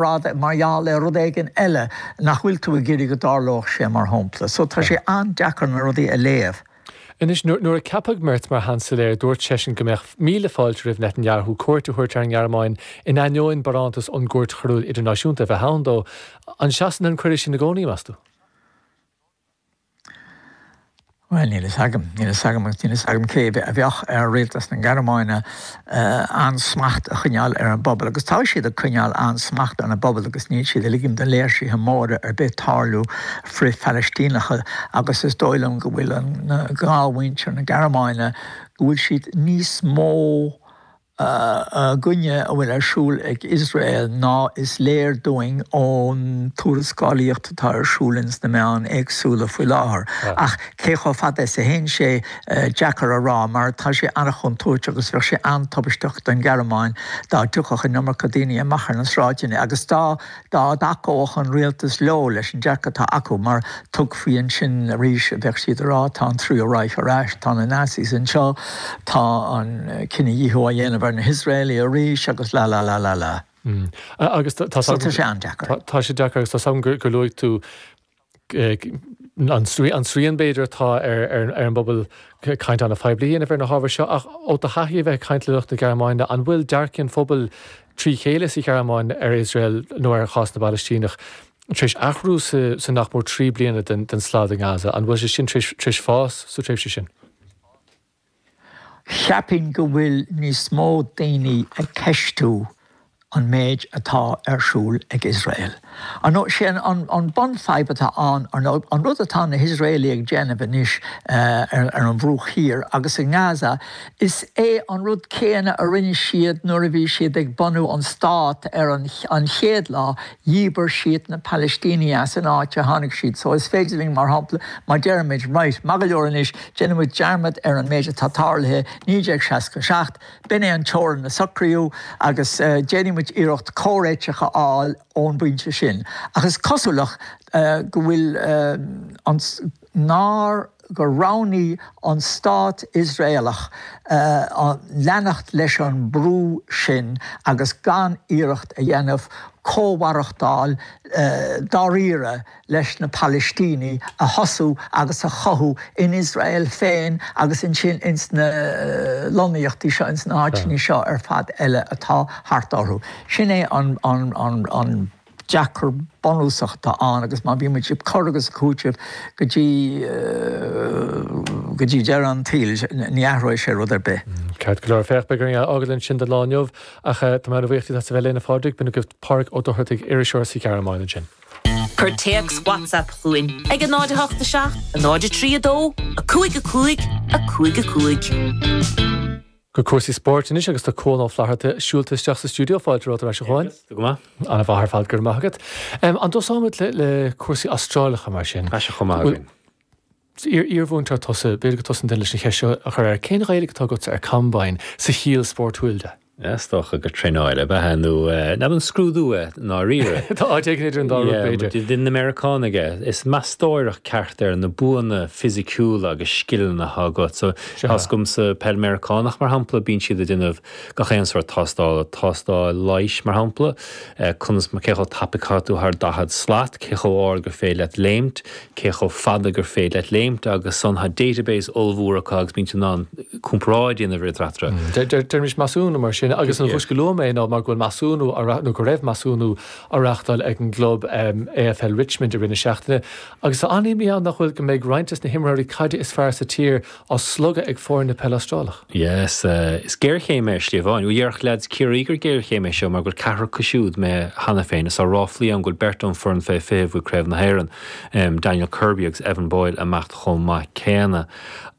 rud mar gheall ar rud éigin eile nach bhfuil tú ag iarraidh go dtarlódh sé, mar shampla. So tá sé an-deacair na rudaí a léamh. Anois, nuair a ceapadh Merz mar Sheansailéir, dúirt seisean go mbeadh míle fáilte roimh Netanyahu cuairt a thabhairt ar an nGearmáin, in ainneoin barántas ón gCúirt Choiriúil Idirnáisiúnta a bheith ann dó. An seasann an cuireadh sin i gcónaí, meas tú? Bhuel, níl fhios agam. Níl fhios agam agus níl fhios agam cé mhéad a bheadh ar rialtas na Gearmáine an-smacht a choinneáil ar an bpobal. Agus tá siad ag coinneáil an-smacht ar an bpobal agus níl siad ag ligint do léirsithe móra ar bith tarlú, frith-Phalaistíneacha, agus is dóigh liom go bhfuil an gnáthmhuintir na Gearmáine, go bhfuil siad níos mó, i gcoinne a bhfuil ar siúl ag Iosrael ná is léir dúinn ón tuarascálaíocht atá ar siúl ins na meáin éagsúla faoi láthair. Ach cé chomh fada is a théann sé, deacair a rá, mar tá sé an-chontúirteach agus bheadh sé an-tubaisteach don Ghearmáin dá dtiocfadh an iomarca daoine amach ar na sráideanna agus dá dá dtacódh an Rialtas leo leis an dearcadh atá acu mar tuigfidh ansin arís, á, bheadh siad ag rá, tá an Tríú Reich ar ais, tá na Nazis anseo, tá an cinedhíothú á dhéanamh ar na hIosraelaigh arís agus la la la la la. So tá sé an-deacair. Tá sé deacair agus tá's agam gur luaigh tú an srian b'fhéidir atá ar an bpobal cainteanna poiblí a dhéanamh ar na hábhair seo ach ó do thaithí a bheith ag caint le lucht na Gearmáine, an bhfuil dearcthaí an phobail trí chéile sa Ghearmáin ar Iosrael nó ar chás na bPalaistíneach tar éis athrú sa nach mór trí bliana den slad i nGaza? An bhfuil sé sin tar éis fás sa tréimhse sin? Cheapfainn go bhfuil níos mó daoine ag ceistiú an méid atá ar siúl ag Iosrael. Ar ndóigh, sé an bunfhadhb atá ann, ar ndóigh, an rud atá na hIosraelaigh ag déanamh anois ar an Bhruach Thiar agus i nGaza, is é an rud céanna a rinne siad nuair a bhí siad ag bunú an stát ar an chéad lá, Dhíbir siad na Palaistínigh as an áit a tháinig siad, so is féidir linn, mar shampla, má deirimid, right, maith go leor anois, déanfaimid dearmad ar an méid atá tarlaithe 1967, b'in é an teorainn a socraíodh agus déanfaimid iarracht comhréiteach a fháil ón bpointe sin. Ach is cosúil go bhfuil an. nár gur roghnaigh an stát Iosraelach leanacht leis an mbrú sin agus gan iarracht a dhéanamh comh-mhaireachtáil dáiríre leis na Palaistínigh a thosú agus a chothú in Iosrael féin agus ansin ins na lonnaíochtaí seo, ins na háiteanna seo ar fad eile atá thart orthu. Sin é an. deacair bunúsach atá ann agus má bhíonn muid ag cur agus ag cúiteamh go dtí go dtí deireadh an tsaoil, ní athróidh sé rud ar bith. Ceart go leor, féach, beidh orainn é a fhágáil ansin don lá inniu ach tá mé an-bhuíoch díot as a bheith linn, a Phádraig. B'in agaibh Pádraig Ó Dochartaigh, iriseoir sa Ghearmáin ansin. Cuir téacs WhatsApp chugainn ag 087 032 55 55. Go cúrsaí spóirt anois agus tá Cuán Ó Flatharta siúlta isteach sa stiúideo. Fáilte romhat ar ais a Chuáin. Go maith. Ana mhaith ar fad, go raibh maith agat. An dtosóimid le cúrsaí Astrálacha mar sin? Tá sé chomh maith againn. Iarmhúinteoir tusa, b'fhéidir go dtosóinn duinn leis an cheist seo a chur air, cén Ghaeilge atá agatsa ar combine, sa chiall spórtúil de? Is dócha gur traenáil ab ea é nó nach an scrúdú é i ndáiríre. Tá áit éigin idir an dá rud b'fhéidir. Bhuel, deineann na Meiriceánaigh é. Is meastóireacht ceart ar na buanna fisiciúla agus scileanna atá agat. tá a fhios agam sa Pheil Mheiriceánach, mar shampla, bíonn siad ag déanamh gach aon sórt tástála, tástáil leighis, mar shampla, conas mar, cé chomh tapaidh caithfidh tú thar daichead slat, cé chomh ard gur féidir leat léimt, cé chomh fada gur féidir leat léimt agus ansan tá database ollmhór acu agus bíonn siad in ann comparáid a dhéanamh idir eatarthu. Déarfaimis measúnú mar sin agus an chúis go luaim é ná mar go bhfuil measúnú á, nó go raibh measúnú á reáchtáil ag an gclub AFL Richmond i rith na seachtaine Agus tá an-imní ann nach bhfuil go mbeidh roinnt des na himreoirí caide is fearr sa tír á slogadh ag foirne peile Astrálach. Yes, is géarchéim é ar shlí amháin. Ó déarfadh leads Ciarraí gur géarchéim é seo mar go bhfuil ceathrar acu siúd imithe cheana féin, is tá ráflaí ann go bhfuil beirt ón foireann fé 20 a bhuaigh Craobh na hÉireann, Daniel Kirby agus Evan Boyle, ag imeacht chomh maith céanna.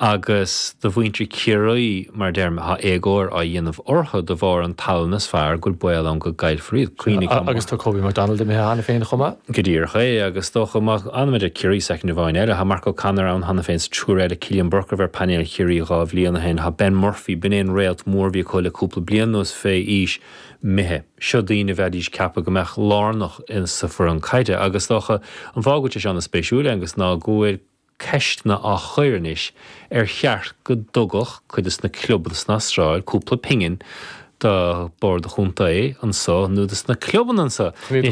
agus do mhuintir Chiarraí mar a deirim tá éagóir á dhéanamh orthu de bharr an tallann is fearr go bhfuil baol ann go gcaillfear iad. Coinnigh an. Agus tá Kobe McDonald imithe cheana féin chomh maith. Go díreach é agus dócha má fhanaimid ar Chiarraí soicind amháin eile, tá Mark O'Connor ann cheana féin sa triúr eile, Cillian Burke a bhí ar phainéal Chiarraí dhá bhliain ó shin, tá Ben Murphy, b'in é an réalt mhór a bhí acu le cúpla bliain anuas fé aois, imithe. Seo daoine a bheidís ag ceapadh go mbeadh lárnach sa foireann caide agus dócha an fáth go bhfuil sé seo ana spéisiúil Aengus ná go bhfuil. ceisteanna á chur anois ar cheart go dtugadh cuid des na clubanna san Astráil cúpla pingin do Bhord an Chontae anseo nó dos na clubanna anseo.